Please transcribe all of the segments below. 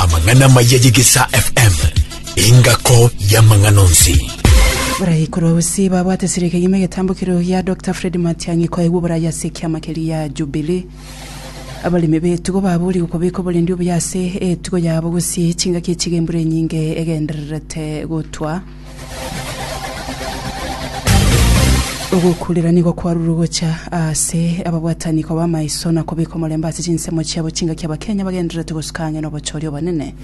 Amang'ana amaya y'Egesaa FM, engako y'amang'ana onsi. Baraikorwa gose babwate serika yime getambukiro ya Dr. Fred Matiang'i koegwa oboraya ase ekiama keria ya Jubilee. Abaremi b'etugo baboorigwe kobeka oborendi obuya ase etugo yabo gose chingaki chiga embura enyinge egendererete gotwa. Ogokuurera nigo kwarurwe gocha ase ababwatani koba amaiso na kobeka omorembe ase chinsemo chiabo chingaki Abakenya bagendererete gosuka ang'e nobochori obonene.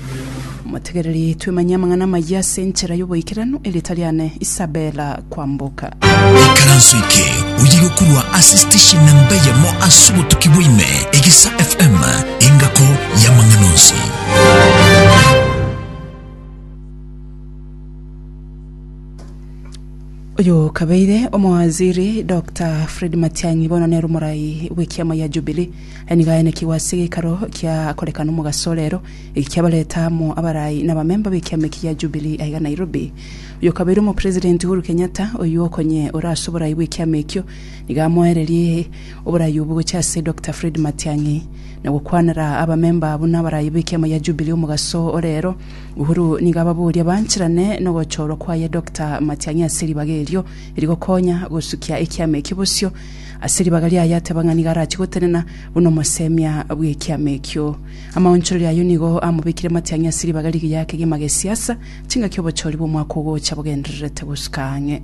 Motegereri twemanye amang'ana amayia ase enchera y'oboikeranu e rita riane Isabella Kwamboka. Ikaranso eke oye gokorwa ase station namba eyemo ase obotuki bwa ime, Egesa FM, engako y'amang'ana onsi. Oyo kabeire omowaziri Doctor Fred Matiang'i bono nere omorai bw'ekiama gia Jubilee. Aye nigo aenekigwe ase gekaro kia korekana omogaso orero, eki kiabareta amo abarai na abamemba b'ekiama eki gia Jubilee aiga Nairobi. Oyo kabeire omopresident Uhuru Kenyatta, oyio okonye ore ase oborai bw'ekiama ekio, nigo amoererie oborai obwo gocha ase Doctor Fred Matiang'i na gokwanera abamemba buna abarai b'ekiama gia Jubilee omogaso orero. Uhuru nigo ababoria bancherane nogochorwa kwaye Doctor Matiang'i ase ribaga erio rigokonya gosukia ekiama ekio bosio. Ase ribaga riaye ateba ng'a nigo arachie gotenena buna omosemia bw'ekiama ekio. Amaonchorero ayio nigo amobekire Matiang'i ase ribaga rigiya ake ri'amagesiasa chingaki obochori bw'omwaka ogocha bogendererete gosuka ang'e.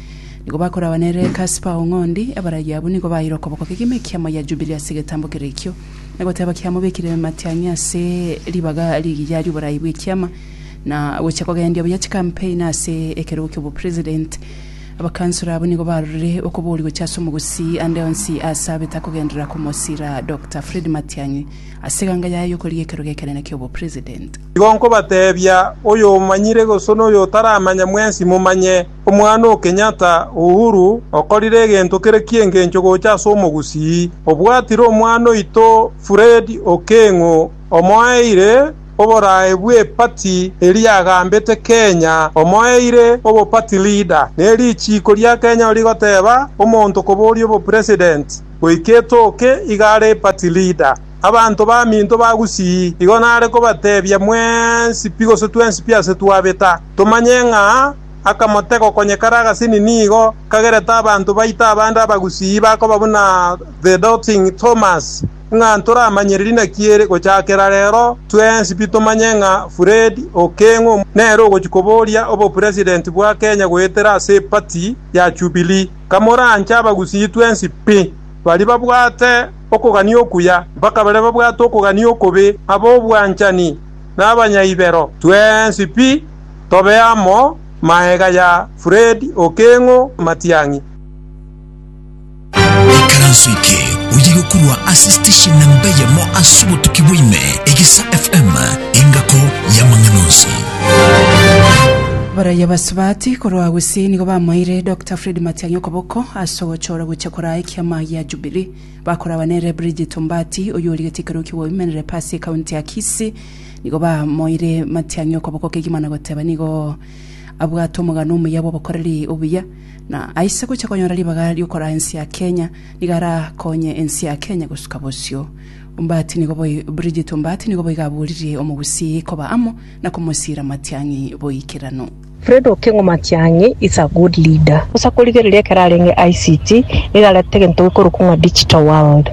Nigo bakoragwa nere Kaspa o ng'ondi, abaragi abwo nigo baeire okoboko kegima ekiamo gia Jubili ase egetambo kere ekio, na goteba, Kiamobekire amatiang'i ase ribaga rigiya ri'oborai bw'ekiama, na gochia kogendia buya chikampeni ase ekerogo ki'obopresident. Abakansoro abwo nigo barorire okobori gochia ase omogusii ande onsi aase abete akogenderera komosira Doctor Fred Matiang'i ase eganga yaye y'okorigia ekerogo ekenene ki'obopresident. Igo nkobatebia, oyomanyire gose noyotaramanya mwensi momanye, Omwana o Kenyatta Uhuru okorire egento kere ki'engencho gocha ase omogusii, obwatire omwana oito Fred Okeng'o omoeire oborae bwe party eria agambete Kenya omoeire obo party leader ne richiiko ria Kenya rigoteba omonto koboria obo president goika etoke iga are party leader abanto baminto ba gusii igo nare kobatebia mwensi pi gose twensi pi ase twabeta tomanye ng'a akamotega okonyekara agasini nigo kagerete abanto baito abande abagusii bakoba buna The Doubting Thomas, ng'a ntoramanyire rinaki ere gochakera rero twensi pi tomanye ng'a Fred Okengo nere ogochia koboria obopresident bwa Kenya goetera ase party ya Jubilee. Kamoranche abagusii twensi pi, baria babwate okogania okuya mpaka baria babwate okogania okobe, abobwanchani na abanyaibero, twensi pi. Tobe amo maega ya Fred Okeng'o Matiang'i. Ekaranso eke oye yokorwa ase station namba eyemo ase obotuki bwa ime, Egesa FM, engako y'amang'ana onsi. Abaraiyo abasubati korwa Gusii nigo bamoeire Dokta Fred Matiang'i okoboko ase ogochora gochia koraa ekiama gia Jubilee. Bakoragwa nere Bridget Ombaati, oyio origetie ekeroki gwa Women Rep ase ekaunti ya Kisii, Nigo bamoire matiang'i okoboko kegima na goteba nigo abwate omogano omuya bw'obokoreri obuya, na aise gocha konyora ribaga ri'okoraa ense ya Kenya. Nigo arakonye ense ya Kenya gosuka bosio. Ombati nigo boi Bridget Ombati nigo boiga aboririe omogusii koba amo na komosiira matiang'i boikeranu. Fred Okengo Matiang'i is a good leader. Bosa korigereria ekero arenge ICT nigo aretete egento gekorokwa ng'a digital world.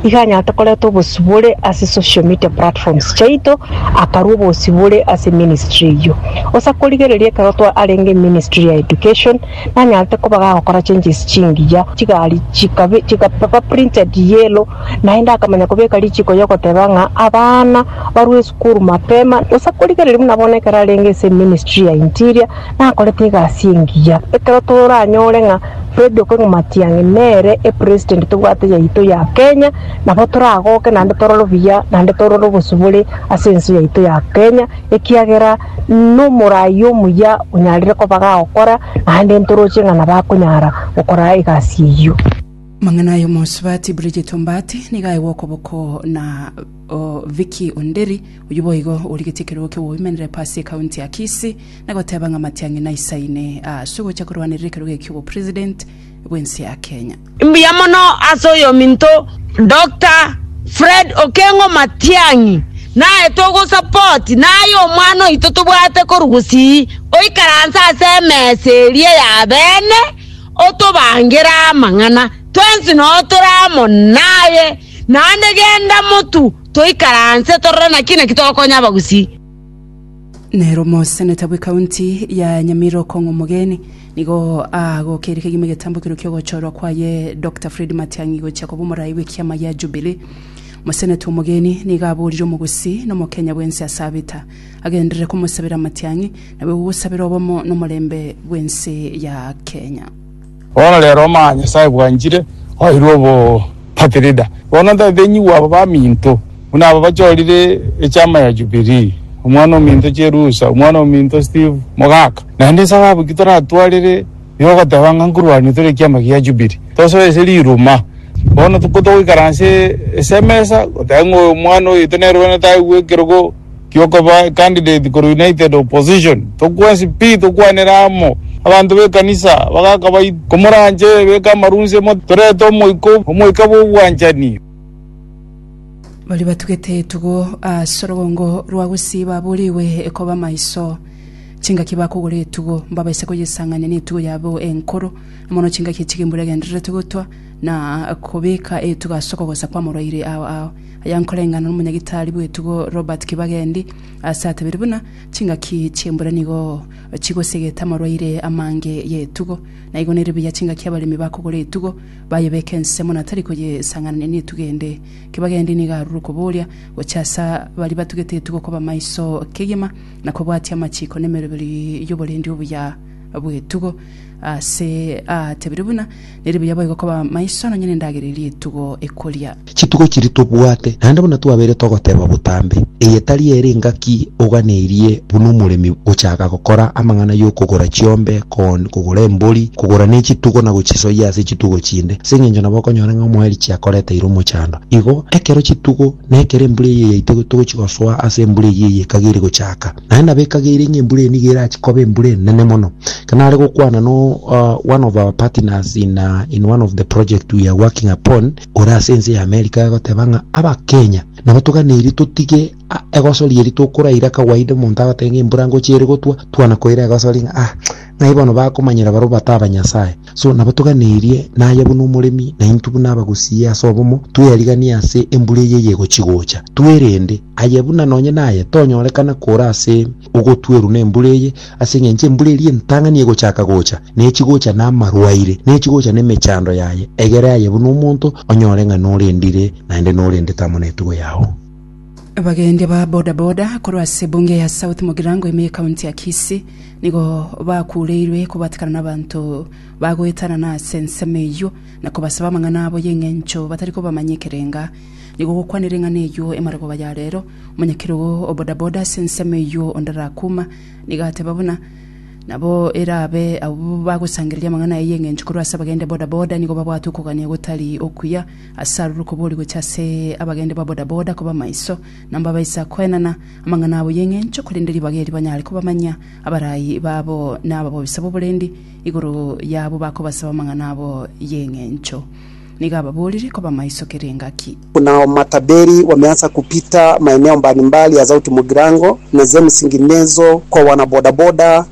Iga anyarete koreta obosibore ase social media platforms chiaito, akarua obosibore ase ministry eyio. Bosa korigereria ekero twa arenge ministry ya education, nanyarete koba gagokora changes chingiya, chigari chikabe chikaba printed yellow, Naende akamanya kobeka richiko y'ogoteba ng'a abana barue esukuru mapema, gose korigereria buna bono ekero arenge ase eministry ya interior nakorete egasi engiya. Ekero toranyore ng'a Fred Okengo Matiang'i nere epresident tobwate yaito ya Kenya, nabo toragoke naende torore obuya naende torore obosibore ase ense yaito ya Kenya, ekiagera nomorai omuya onyarire koba gagokora naende ntoroche ng'a nabo akonyara gokora egasi eyio. Amang'ana ay'omosubati Bridget Ombaati nigo aegwe okoboko na o, Vicky Onderi, oyio boigo origetie ekerogo ki'oboimerere Pasi ekaunti ya Kisii, na goteba ng'a amatiang'i naisaine ase ogocha korwanerera ekerogo ekio obopresident bw'ense ya Kenya. Mbuya mono ase oyominto Doctor Fred Okengo Matiang'i naye togosupport naye omwana oito tobwate korwa gusii oikaranse ase emesa eria ya bene otobangere amang'ana, twensi noo tore amo naye, naende genda motu toikaranse torore naki naki togokonya abagusii. Nere omoseneta bw'ekaunti ya Nyamira Okong'u Omogeni nigo agokeire kegima egetambo ekeru ki'ogochorwa kwaye Dokta Fred Matiang'i gochia koba omoraai bw'ekiama gia Jubilee. Omoseneta Omogeni nigo aborire omogusii na omokenya bwensi ase abita. agenderere komosabera amatiang'i, nabo egogosabera obomo nomorembe bw'ense ya Kenya. Bono rero omanye Nyasae bwanchire, oirwe obopatirida. Bono ntatenyigwe aba baminto, buna aba bachorire echama ya Jubilee, omwana ominto Cherusa, omwana ominto Steve Mogaka, naende esababu ki toratwarire igo ogoteba ng'a nkorwania tore ekiama gia Jubilee. Tosoe ase riruma. Bono ko togoikaransa ase emesa, goteba ng'a oyo omwana oito nere one taigwe ekerogo. kiokoba candidate korwa United Opposition, tokwensi pi tokwanere amo. Abanto b'ekanisa bagaka bai, Komoranche beka amarunse mo torete omoika, omoika bw'obwanchani. Baria batugete etugo ase orogongo rwa Gusii baburigwe koba maiso. Chingaki bakogora etugo mbabaise koyesang'ania netugo yabo enkoro, na mono chingaki chigimburegendererete gotwa na kobeka etugo ase okogosa kw'amoroiri ao ao. Aya nkoreng'ana nomonyagitari bw'etugo Robert Kibagendi ase atebirie buna chingaki chi'embura nigo chigosegete amarwaire amange y'etugo. Naigo nere buya chingaki abaremi bakogora etugo bayebeke ensemo na tari koyesang'anania netugo ende. Kibagendi nigo arure okoboria gocha ase baria batugete etugo koba maiso kegima na kobwatia amachiko nemeroberi y'oborendi obuya. bw'etugo, aase aatebire buna, Nere buya boigo koba maiso nonya nendagera eria etugo ekoria. Chitugo chiria tobwate, naende buna twabeire togoteba botambe, eye tari ere engaki oganeirie buna omoremi gochaaka gokora amang'ana y'okogora chiombe, corn, kogora embori, kogora ne chitugo na gochisoyia ase chitugo chinde. Ase engencho nabo okonyora ng'a omoeri chiakoreteire omochando. Igo, ekero chitugo, na ekero embura eyio yaitwe togochigosoa ase embura eyio eye ekageri gochaaka, Naende nabekageire ng'a embura eye nigo erache koba embura enene mono, ekero nare gokwana no one of our partners in in one of the project we are working upon ore ase ense ya America agoteba ng'a abakenya nabo toganeiri totige egosori eri tokoraira kawaida omonto agotebi ng'a embura ngocha ere gotwa, twana koira egosori ng'a ah ng'ai bono bakomanyera barobwo batabanyasae. So nabo toganeirie naye buna omoremi, na intwe buna abagosiie ase obomo, tweyariganie ase embura eye yegochi gocha. Twerende, aye buna nonye naye, tonyorekana kora ase ogotweruna embura eye, ase engencho embura eria entang'ani egochaka gocha, ne chigocha namarwaire, ne chigocha nemechando yaye, egere aye buna omonto onyore ng'a norendire naende norendete amo netugo yao. Abagendia ba boda boda korwa ase ebunge ya South Mugirango ime y'ekaunti ya Kisii nigo bakureirwe kobatikana n'abanto bagoetanana ase ensemo eyio na kobasaba amang'ana abo y'eng'encho batari kobamanya ekerenga nigo gokwanera eng'ana eyio emarogooba ya rero. Omonyakerogo o boda boda ase ensemo eyio onde Rakuma nigo ateba buna nabo erabe abwo bagosangereria amang'ana aya y'eng'encho korwa ase abagendia boda boda nigo babwate okogania gotari okuya Ase aroro kobori gocha ase abagende ba bodaboda koba maiso, na mbabaisa koenana amang'ana abo y'eng'encho, korende ribaga eri banyare kobamanya abarai babo na ababisa b'oborendi igoro yabo bakobasaba amang'ana abo y'eng'encho. Nigo ababorire koba maiso kera engaki. Kuna matabiri wameanza kupita maeneo mbalimbali ya Zauti Mugirango na zemisingi ndezo kwa wanabodaboda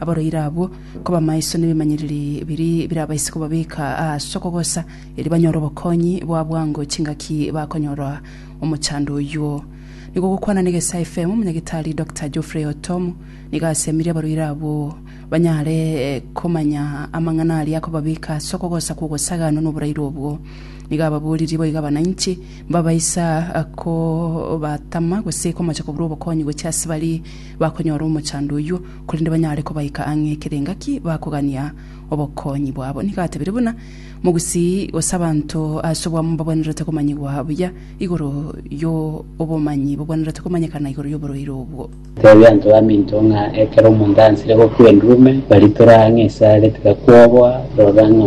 abaroire abwo koba amaiso nebimanyereri biri birabaise kobabeka ase okogosa, erio banyore obokonyi boa bwango chingaki bakonyora omochando oyuo. Nigo gokwana na Egesae FM, Omonyagitari Doctor Geoffrey Otom nigo asemirie abaroire abwo banyare komanya amang'ana aria akobabeka ase okogosa kw'ogosaganwa noboraire obwo. Nigo ababoririe boigo abananchi mbabaisa kobatama gose komocha koburwa obokonyi gochia ase baria bakonyora omochando oyuo, korende banyare kobaika ang'e ekero engaki bakogania obokonyi bwabo. Nigo atebirie buna mogusii gose abanto ase obwamo mbabwenerete komanyigwa buya igoro y'obomanyi bobwenerete komanyekana igoro y'oborwaire obwo. Teebia abanto baminto ng'a ekero omonto ansire gokwa endurome, baritora ang'e esare, tiga kwobwa, rora ng'a